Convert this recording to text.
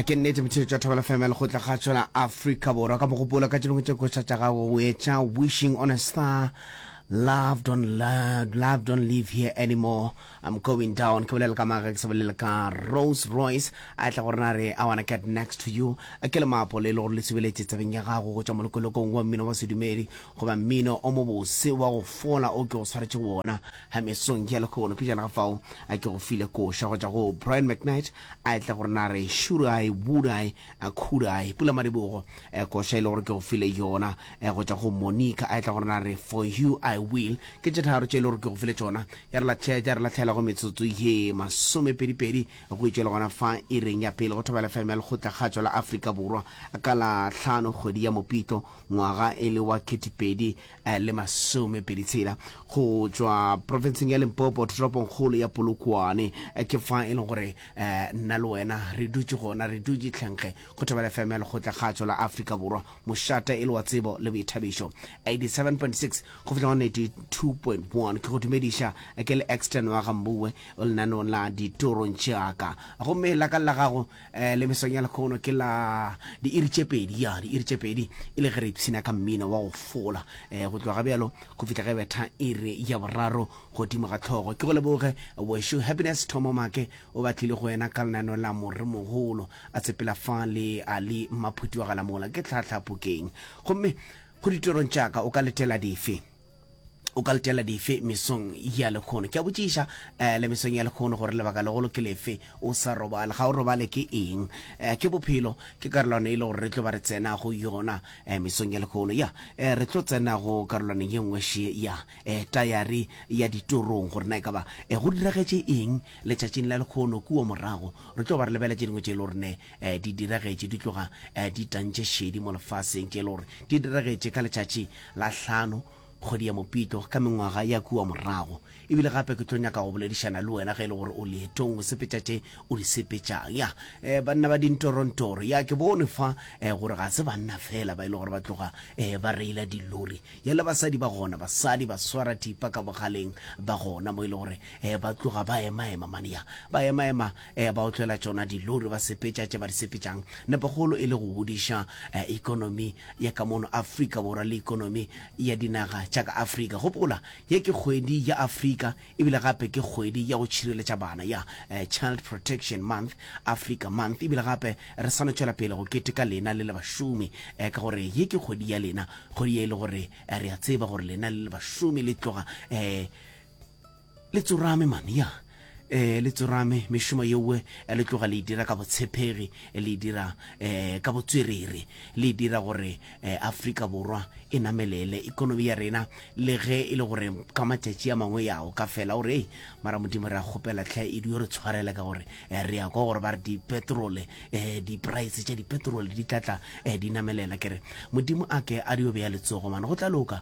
ke nnete motshedi tša thobela fm le gotla ga tsona afrika borwa ka mogopolo ka tšelong tše koša tša gago o etša wishing on a star love don't love, love don't live here anymore i'm going down ke bolela ka maga ke se bolela ka rose royce a tla gore na re i wanna get next to you a ke le maapo le le gore le sebeletse tsebeng ya gago go tšwa molokolokong wa mmino wa sedumedi Goba mmino o mobose wa go fola o ke go swaretšego wona ha mesong ya lekgono. Pejana ga fao, a ke go file koša go tšwa go Brian McKnight, a etla gore na re should I, would I, could I. Pula Madibogo, koša e le gore ke go file yona go tšwa go Monica, a etla gore na re for you I will. Ke tše tharo tše e le gore ke go file tšona. Ya re lahlela, ya re lahlela go metsotso ye masomepedipedi go itšwe le gona fa ireng ya pele go thobela FM ya Lekgotla Kgatšwa la Afrika Borwa ka la hlano kgwedi ya Mopitlo ngwaga e le wa ketepedi eh, le masomepedi tshela go tšwa profenseng ya limpopo toropongkgolo ya polokwane eh, ke fa e leng gore eh, nna le wena re dutše gona re dutše tlhenkge go thobela fm ya lekgotla kgatšo la afrika borwa mošata e le wa tsebo le boithabišo 87.6 go fihla go 92.1 ke go dumediša eh, ke le exton wa gambue o lenanong la ditorong tšeaka gomme la ka la gago eh, le mesong ya lekgono ke la diiri tše pedi ya diiri tše pedi e le ge re ipshina ka mmino wa go fola um go tloga bjalo go fitlha ge betha iri ya boraro godimo ga tlhogo ke go leboge wešo happiness thomo make o batlile go wena ka lenano la moremogolo a tsepela fa le a le maphuti wa galamola ke tlhatlhapokeng gomme go ditorong tšaka o ka letela dife o ka letela dife mesong ya lekgono ke a botšiša um le mesong ya lekgono gore lebaka legolo ke lefe o sa robale ga o robale ke eng um ke bophelo ke karolwana e le gore re tlo ba re tsena go yona um mesong ya lekgono ya um re tlo tsena go karolwana ye nngwe še ya um tayari ya ditorong gore na e ka ba um go diragetše eng letšatšing la lekgono kua morago re tlo ba re lebeletše dingwe tše e le gore ne um di diragetše di tloga um di tantše šedi mo lefaseng, tše e le gore di diragetše ka letšatši la hlano kgwedi ya Mopitlo ka mengwaga ya kua morago. E bile gape ke tlo nyaka go boledišana le wena ge e le gore o leetong o sepetša tše o di sepetšang. Ya um banna ba dintorontoro, ya ke bone fa um gore ga se banna fela ba e le gore ba tloga um ba reila dilori, ya le basadi ba gona, basadi baswarathipa ka bogaleng ba gona mo e le gore um ba tloga ba emaema mane, ya ba emaema. Eya, ba otlela tšona dilori, ba sepetša tše ba di sepetšang, nepokgolo e le go godiša ekonomi ya ka mono Afrika Borwa le ekonomi ya dinaga tša ka Afrika. Gopola, ye ke kgwedi ya Afrika e bile gape ke kgwedi ya go tšhireletša bana, ya Child Protection Month, Africa Month, e bile gape re sano tšwela pele go keteka lena le le bašomi ka gore ye ke kgwedi ya lena, kgwedi ye e le gore re a tseba gore lena le le bašomi le tloga Le tsorame man, ya. Eh, le tsorame, mešomo yeoe eh, le tloga le e dira ka botshepegi, eh, le e dira eh, ka botswerere, le e dira gore eh, Afrika Borwa e namelele, ekonomi ya rena, le ge e le gore ka matšatši a mangwe ya o ka fela o re, ei, mara Modimo re a kgopela tlhe e dio re tshwarele ka gore eh, re ya kwa gore ba re dipetrole, eh, dipraese tša dipetrole di tla tla eh, di namelela. Ke re Modimo a ke a dio bea letsogo man, go tla loka,